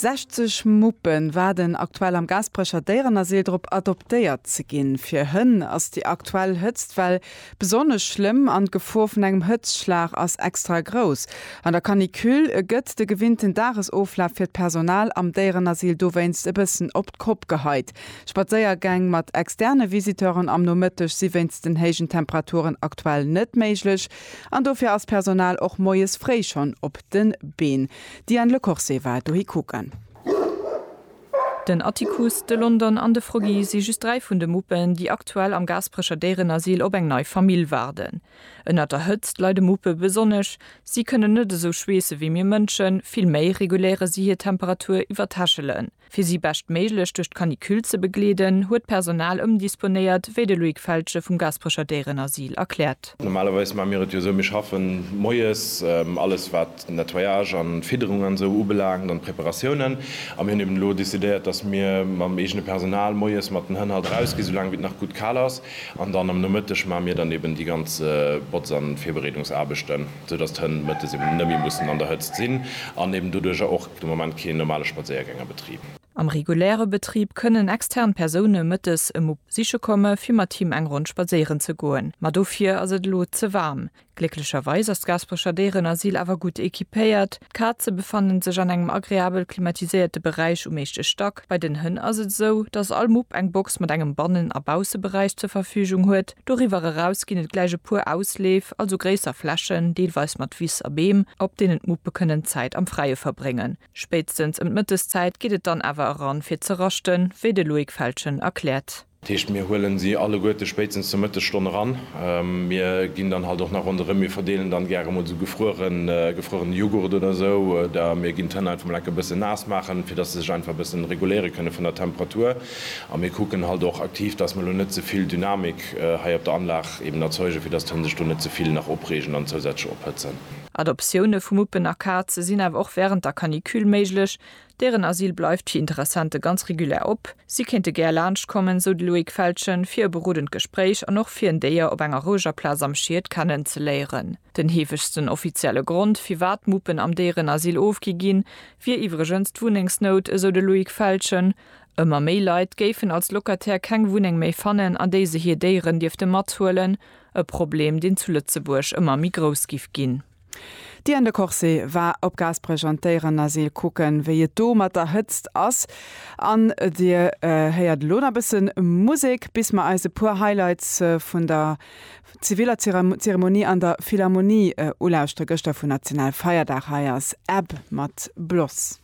60 Muppen waarden aktuell am Gaasperecher Déierenasyl drop, adoptéiert ze ginn. Fir Hënn ass déi aktuell Hëtztwell besonnesch schlëmm an d'Gefor vun engem Hëtztschlag ass extra grouss. An der Canicule gëtt de gewinnten Dagesoflaf fir d'Personal am Déierenasyl dowéinst e bëssen op d'Kopp geheit. Spadséiergäng mat externe Visiteuren am Nomëtteg si wéinst den héijen Temperaturen aktuell net méiglech. An dofir ass d'Personal och moies fréi schonn op de Been. D'Diane Lecorse war dohi kucken. Den Atticus, de London an de Froggy si just dräi vun de Muppen, déi aktuell am Gaasperecher Déierenasyl op eng nei Famill waarden. Ënnert der Hëtzt leide Muppe besonnesch. Si kënnen net esou schweesse wéi mir Mënschen, vill méi reguléiere si hir Temperatur iwwer d'Hechelen. Fir si beschtméiglech duerch d'Canicule ze begleeden, huet d'Personal ëmdisponéiert, wéi de Loïc Feltgen vum Gasperecher Déierenasyl erkläert. Normalerweis maache mir et jo sou, mir schaffen moies alles, wat Nettoyage an Fidderung an esou ubelaangt an d'Preparatiounen. A mir hunn eben elo decidéiert, dass mir mam eegene Personal moies mat den Hënn halt eraus ginn, soulaang wéi et nach gutt kal ass. An dann am Nomëtteg maache mir dann eben déi ganz Botz an Virbereedungsaarbechten, sou dass d'Hënn mëttes eben net méi mussen an der Hëtzt sinn an eben doduerjer och. De Moment keen normale Spadséiergäng a Betrib. Am reguläre Betrib kënnen extern Persoune mëttes e Mupp siche komme fir mat him eng Ronn spadséieren ze goen, ma dofir ass et elo ze waarm. Glécklecherweis ass d'Gaasperecher Déierenasyl awer gutt equipéiert, d'Kaze befannen sech an engem agreabel klimatiséierte Beräich um éischte Stack, Bei den Hënn ass et esou, dass all Mupp eng Box mat engem Bannen a Bausseberäich zur Verfügung huet. Doriwwer eraus ginn et gläich e puer Ausleef, also gréisser Flächen, deelweis mat Wiss a Beem, op deenen d'Muppe kënnen Zäit am Fräie verbréngen. Spéitstens ëm d'Mëtteszäit geet et dann awer eran, fir ze raschten, wéi de Loïc Feltgen erkläert. Dat heescht, mir huelen si alleguerte spéitstens zur Mëttesstonn eran. Mir ginn dann halt och nach ronderëm, mir verdeelen dann gäre mol esou gefrueren, gefruerene Jughurt oder esou, oder mir ginn d'Hënn einfach mol enke bëssen naass maachen, fir dass se sech einfach e bëssen reguléiere kënne vun der Temperatur. A mir kucken halt och aktiv, dass mer elo net ze vill Dynamik hei op der Anlag eben erzeugen, fir dass d'Hënn sech do net ze vill nach opreegen an zousätzlech ophëtzen. Adoptioune vu Muppen a Kaze sinn awer och wärend der Canicule méiglech, Deren Asyl bleift fir Interessente ganz regulär op. Si kéinte gär laanscht kommen, sou de Loïc Feltgen, fir e berodend Gespréich an och fir en Déier op enger roueger Plaz am Schied kennen ze léieren. Den heefegsten offizielle Grond, firwat d'Muppen am Déierenasyl ofgi ginn, wier iwwregens d'Wunnengsnout, esou de Loïc Feltgen. Ëmmer méi Leit géifen als Locataire keng Wunneng méi fannen, an déi se hir Déieren dierfte mathuelen. E Problem, deen zu Lëtzebuerg ëmmer méi grouss giff ginn. D'Diane de Courcy war op Gaasperech an d'Déieren Asyl kucken, wéi et do mat der Hëtzt ass. An Dir héiert elo nach bësse Musek, bis mer eis e puer Highlights vun der ziviller Zeremonie an der Philharmonie ulauschteren. Gëschter vun Nationalfeierdag. Hei ass Ebb mat Bloss.